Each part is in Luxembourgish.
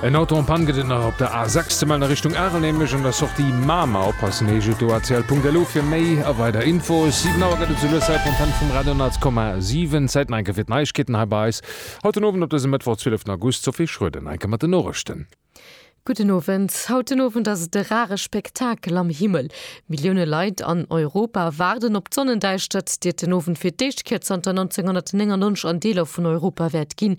En Auto en Panne gëtt et nach op der A 6 ze mellen a Richtung Arel, nämlech un der Sortie Mamer. Oppassen heescht et do, atl.lu fir méi a weider Infos. 7 Auer gëtt et zu Lussel op Antenne vum Radio 100,7. Zäit nach eng Kéier fir d'Neiegkeeten hei bei eis haut den Owend op dësem Mëttwoch 12 August. Sophie Schroeder nach eng Kéier mat den Norechten. Gudden Owend. Haut den Owend ass et e rare Spektakel am Himmel. Millioune Leit an Europa waarden op d'Sonnendäischtert, déi et den Owend fir d'éischt Kéier zanter 1999 an Deeler vun Europa wäert ginn.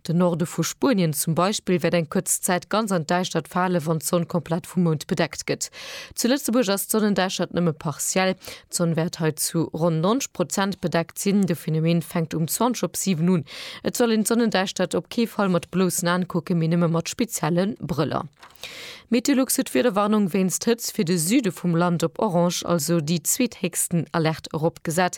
Den Norde vu Spuenien zum Beispill wäert eng kuerz Zäit ganz an d'Däischtert fale wann d'Sonn komplett vum Mound bedeckt gëtt. Zu Lëtzebuerg ass d'Sonnendäischtert nëmme partiell. D'Sonn wäert hei zu ronn 90 Prozent bedeckt sinn. De Phenomen fänkt um 20 op 7 un. Et soll een d'Sonnendäischtert op kee Fall mat bloussen Aen kucken, mee nëmme mat spezielle Brëller. Meteolux huet d'Wiederwarnung wéinst Hëtzt fir de Süde vum Land op orange, also déi zweethéchsten Alerte eropgesat.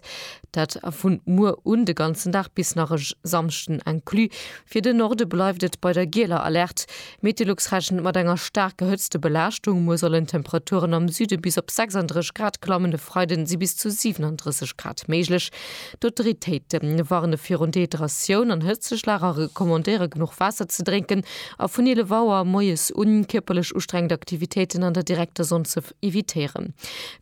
Dat vu muer un de ganzen Dag bis nach e Samschden inclus. Fir de Norde bleift et bei der gieler Alerte. Meteolux rechent mat enger staark gehëtzte Belaaschtung. Muer sollen d'Temperaturen am Süde bis op 36 Grad klammen, e Freide si bis zu 37 Grad méiglech. D'Autoritéite warne virun Dehydratioun an Hëtzeschlag a recommandéiere genuch Waasser ze drénken a vun 11 Auer moies un kierperlech ustrengend Aktivitéiten an der direkter Sonn ze Evitéieren.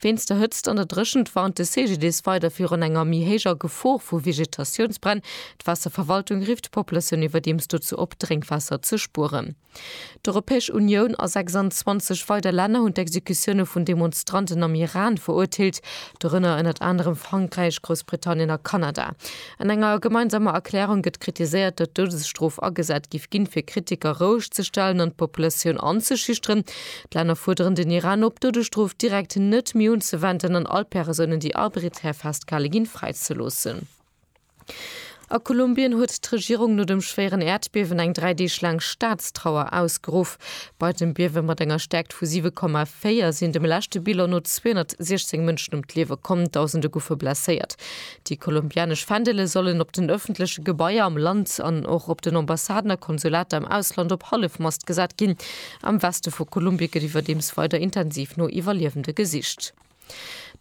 Wéinst der Hëtzt an der Dréchent warnt de CGDIS weider virun enger méi héijer Gefor vu Vegetatiounsbränn. D'Waasserverwaltung rifft d'Populatioun iwwerdeems dozou op, Drénkwaasser ze spueren. D'Europäesch Unioun a 26 weider Länner hunn d'Exekutioune vun Demonstranten am Iran verurteelt, dorënner ënnert anerem Frankräich, Groussbritannien a Kanada. An enger gemeinsamer Erklärung gëtt kritiséiert, datt d'Doudesstrof agesat giff ginn, fir Kritiker roueg ze stellen an d'Populatioun anzeschüchteren, D'Länner fuerderen den Iran op, d'Doudesstrof direkt net méi unzewenden an all Persounen, déi arbiträr festgehale ginn, fräizeloossen. A Kolumbien huet d'Regierung no dem schwéieren Äerdbiewen eng dräi Deeg laang Staatstrauer ausgeruff. Bei dem Biewe mat enger Stäerkt vu 7,4 sinn dem leschte Bilan no 216 Mënschen ëm d'Liewe komm, Dausende goufe blesséiert. Déi kolumbianesch Fändele sollen op den ëffentleche Gebaier am Land an och op den Ambassaden a Konsulater am Ausland op Hallefmast gesat ginn. Am Weste vu Kolumbie gëtt iwwerdeems weider intensiv no Iwwerliewende gesicht.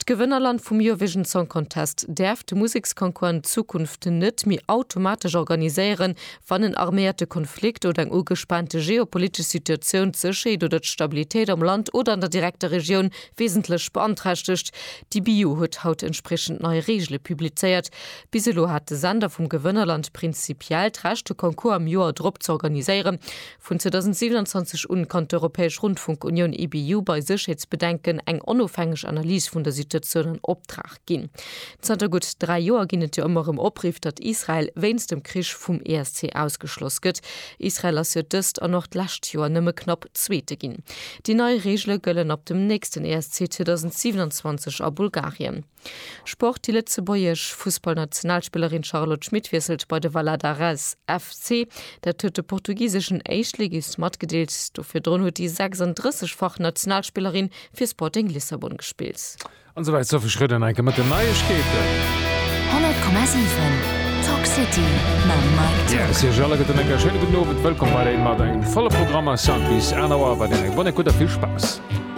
D'Gewënnerland vum Eurovision Song Contest däerf de Museksconcours an Zukunft net méi automatesch organiséieren, wann en arméierte Konflikt oder eng ugespaante geopolitesch Situatioun d'Sécherheet oder d'Stabilitéit am Land oder an der direkter Regioun wesentlech beanträchtegt. D'EBU huet haut entspriechend nei Reegele publizéiert. Bis elo hat de Sender vum Gewënnerland prinzipiell d'Recht, de Concours am Joer drop z'organiséieren. Vun 2027 un kann d'Europäesch Rundfunkunioun, EBU, bei Sécherheetsbedenken eng onofhängeg Analys vun der Situatioun an Optrag ginn. Zanter gutt dräi Joer ginn et jo ëmmer erëm Opriff, datt Israel wéinst dem Krich vum ESC ausgeschloss gëtt. Israel ass jo dëst an och d'lescht Joer nëmme knapp Zweete ginn. Déi nei Reegele gëllen ab dem nächsten ESC 2027 a Bulgarien. Sport, Déi lëtzebuergesch Fussballnationalspillerin Charlotte Schmit wiesselt bei de Valadares FC. Dat huet de portugiseschen Éischtligist matgedeelt. Do virdrun huet déi 36 fach Nationalspillerin fir Sporting Lissabon gespillt. An esou wäit Sophie Schroeder enke mat den Neiegkeeten. 100,7 Talk City mam Mike Tock. Merci iech alleguerten an enke schéine gudden Owend. Wëllkomm weiderhin mat engem volle Programm. Eis Soundbiz, 1 Auer, weiderhin eng bonne écoute a vill Spaass.